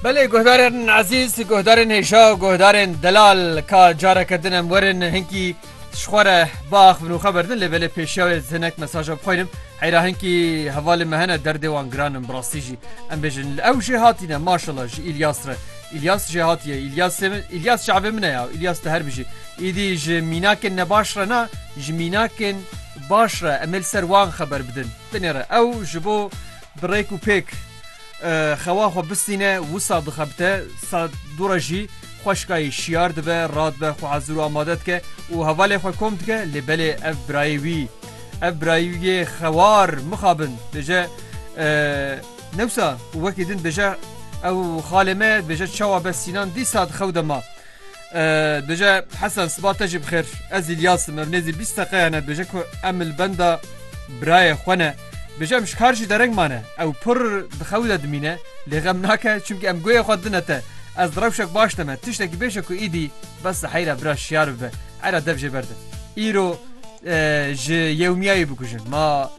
Belê guhdarên ezîz, guhdarên hêja û guhdarên delal ka careke din em werin hinkî ji xwe re biax bin û xwe berdin lê belê pêşiya wê ez hinek mesaja bixwînim heyra hinkî hevalên me hene derdê wan giran in bi rastî jî em bêjin li ew jê hatîne maşala ji Îlyas re Îlyas jê hatiye Îlyasê min Îlyas çavê min e ya Îlyas te her bijî îdî ji mînakên nebaş re na ji mînakên baş re em ê li ser wan xeber bidin binê re ew ji bo Bi rêk û pêk xewa xwe bistîne, wisa dixebite, saet du re jî xweşkayî şiyar dibe, radibe, xwe hezir û amade dike û hevalê xwe kom dike lê belê ev birayê wî, ev birayê wî yê xewar mixabin dibêje newsa û wekî din dibêje ew xalê me ye, dibêje çawa be Sînan dîsa di xew de ma. Dije Hesen siba te jî bixêr ez İlyas me nêzî bîst seqeya ne dije ku em li benda birayê xwe ne Bije em ji kar jî dereng mane ew pir dixew de dimîne lê xem nake çimkî em goyê xwe dine te ez di rewşek baş de me tiştekî bêje ku îdî bes li heyra bira şiyar bibe heyra dev jê berde îro ji yewmiyayê bikujin ma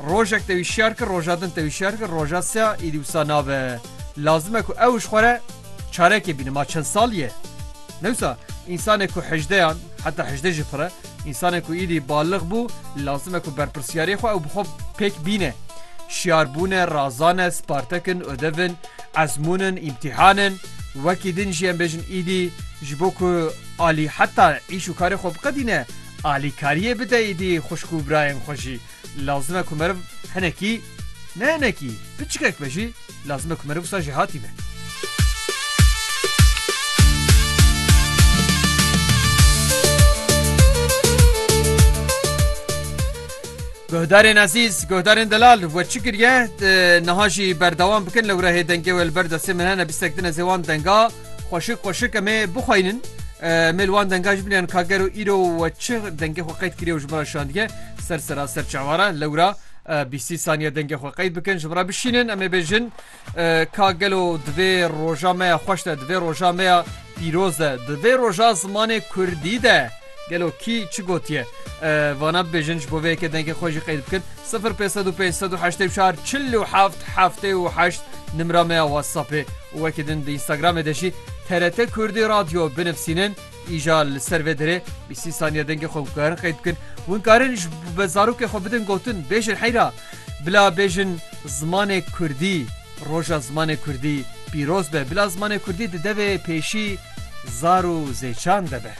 Rojek te wîşyar kir, roja din te wîşyar kir, roja se ya êdî wisa nabe. Lazim e ku ew ji xwe re çarekê bîne. Ma çend sal ye? Ne wisa însanê ku hejdeyan heta hejdeh jî pir e. Însanê ku êdî balix bû lazim e ku berpirsyariyê xwe ew bi xwe pêk bîne. Şiyarbûn e, razan e, spartek in, odev in, ezmûn in, îmtîhan in. Wekî din jî em bêjin êdî ji bo ku alî heta îş û karê xwe biqedîne Alîkariyê bide êdî xwişk û birayên xwe jî. Lazim e ku meriv hinekî, ne hinekî, piçikek be jî, lazim e ku meriv wisa jêhatî be. Guhdarên ezîz, guhdarên delal we çi kiriye? Niha jî berdewam bikin lewrehê dengê we li ber destê min hene bîstek din ez ê wan denga. Xweşik xweşik em ê bixweynin. Mê li wan denga ji binêyan ka gero îro we çi dengê xwe qeyd kiriye û ji min re şandiye ser sera ser çewara lewra bîstî saniye dengê xwe qeyd bikin ji min re bişînin em ê bêjin ka gelo divê roja me ya xweş de divê roja me ya pîroz de divê roja zimanê kurdî de Gelo kî çi gotiye? Vana bibêjin ji bo vê yekê dengê xwe jî qeyd bikin. 0505840778 nimra me ya WhatsAppê û wekî din di Instagramê de jî TRT Kurdî Radyo binivîsînin. Îja li ser vê dirê bîsî saniye dengê xwe gukarin qeyd bikin. Hûn karin ji bi zarokê xwe bidin gotin bêjin heyra. Bila bêjin zimanê Kurdî, roja zimanê Kurdî pîroz be. Bila zimanê Kurdî di devê pêşî zar û zêçan de be.